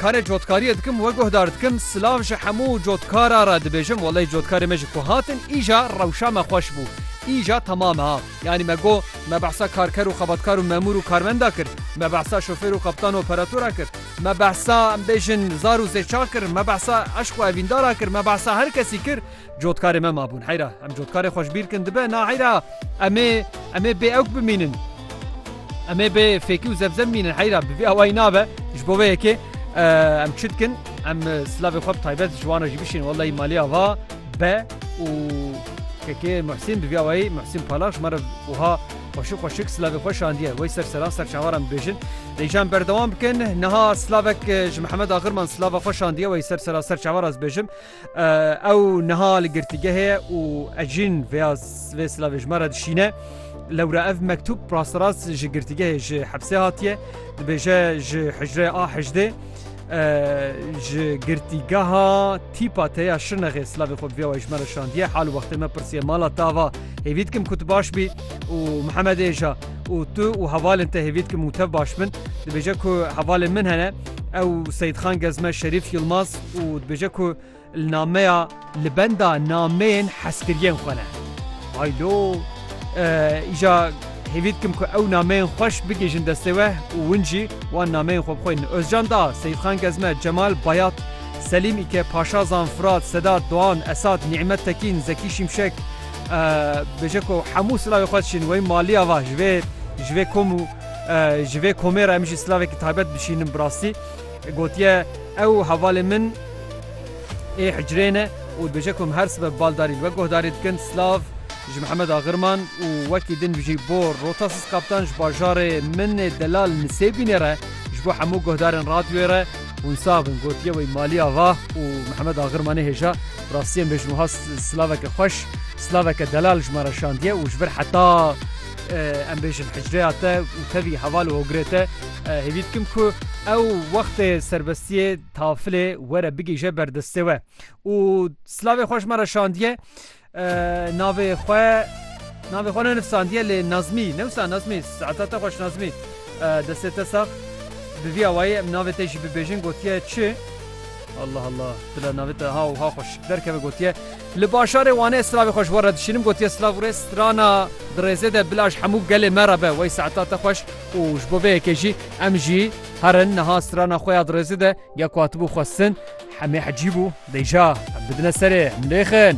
Karê cotkariyê dikim we guhdar dikim silav ji hemû cotkara re dibêjim welay cotkarê me ji ku hatin îja rewşa me xweş bû îja temam ha yanî me got me behsa karker û xebatkar û memûr û karmenda kir me behsa şofêr û qeptan û operatora kir me behsa em bêjin zar û zêçar kir me behsa eşq û evîndara kir me behsa her kesî kir Cotkarê me mabûn heyra em cotkarê xweş bîr kin dibe na heyra emê emê bê ewk bimînin. Emê bê fêkî û zevzem mînin heyra bi vî awayî nabe ji bo vê yekê em çi dikin em silavê xwe bi taybet ji wan re jî bişînin wellahî malê ava be û kekê Muhsîn bi vî awayî Muhsîn Palax ji me re wiha xweşik xweşik silavê xwe şandiye wey ser seran ser çawaran bibêjin Rêjan berdewam bikin niha silavek ji Mihemed Axirman silava xwe şandiye wey ser sera ser çawaraz bêjim Ew niha li girtîgehê ye û ez jîn vêya vê silavê ji me re dişîne. Lewra ev mektûb rasterast ji girtîgehê ji hepsê hatiye. Dibêje ji hicrê a hejdê ji girtîgeha tîpa teya şirnexê silavê xwe vêya ji me re şandiye. Hal wextê me pirsiye mala tava hêvî dikim ku tu baş bî û Mihemedê ja û tu û hevalên te hêvî dikim û tev baş bin. Dibêje ku hevalên min hene. Ew Seyîdxan Gezme Şerîf Yilmaz û dibêje ku li nameya li benda nameyên hezkiriyên xwe ne. Hay lo îja hêvî dikim ku ew nameyên xweş bigihîjin destê we û win jî wan nameyên xwe bixwînin. Ozcan da, Seyîdxan Gezme, Cemal, Bayat, Selîm, Îke, Paşazan, Firat, Sedat, Doan, Esad, Nîmet Tekîn, Zekî Şimşek, dibêje ku hemû silavê xwe diçîn wê maliya va ji vê ji vê kom û Ji vê komê re em jî silavekî taybet bişînin bi rastî. Gotiye ew hevalê min ê hicrê ne û dibêje ku em her sibe bi baldarî li we guhdarî dikin. Silav ji Mihemed Agirman û wekî din bijî bo Rota Siz Kaptan ji bajarê min ê Delal Nisêbînê re ji bo hemû guhdarên radyoyê re. Hûn sax bin gotiye wî Malî Ava û Mihemed Agirmanê hêja. Bi rastî em bêjin wiha silaveke xweş, silaveke delal ji me re şandiye û ji vir heta. Em bêjin hicreya te û tevî heval û hogirê te hêvî dikim ku ew wextê serbestiyê tafilê were bigihîje ber destê we û silavê xwe ji me re şandiye navê xwe navê xwe nenivsandiye lê nazmî newsa nazmî saeta te xweş nazmî destê te sax bi vî awayî em navê te jî bibêjin gotiye çi Allah Allah dila navê te ha û ha xweş derkeve gotiye Li bajarê Wanê silavê xwe ji we re dişînim, gotiye silav rê strana di rêzê de bila ji hemû gelê me re be wey saeta te xweş û ji bo vê yekê jî em jî herin niha strana xwe ya di rêzê de ya ku hatibû xwestin hemê hecî bû dêja em bidine serê em lêxin.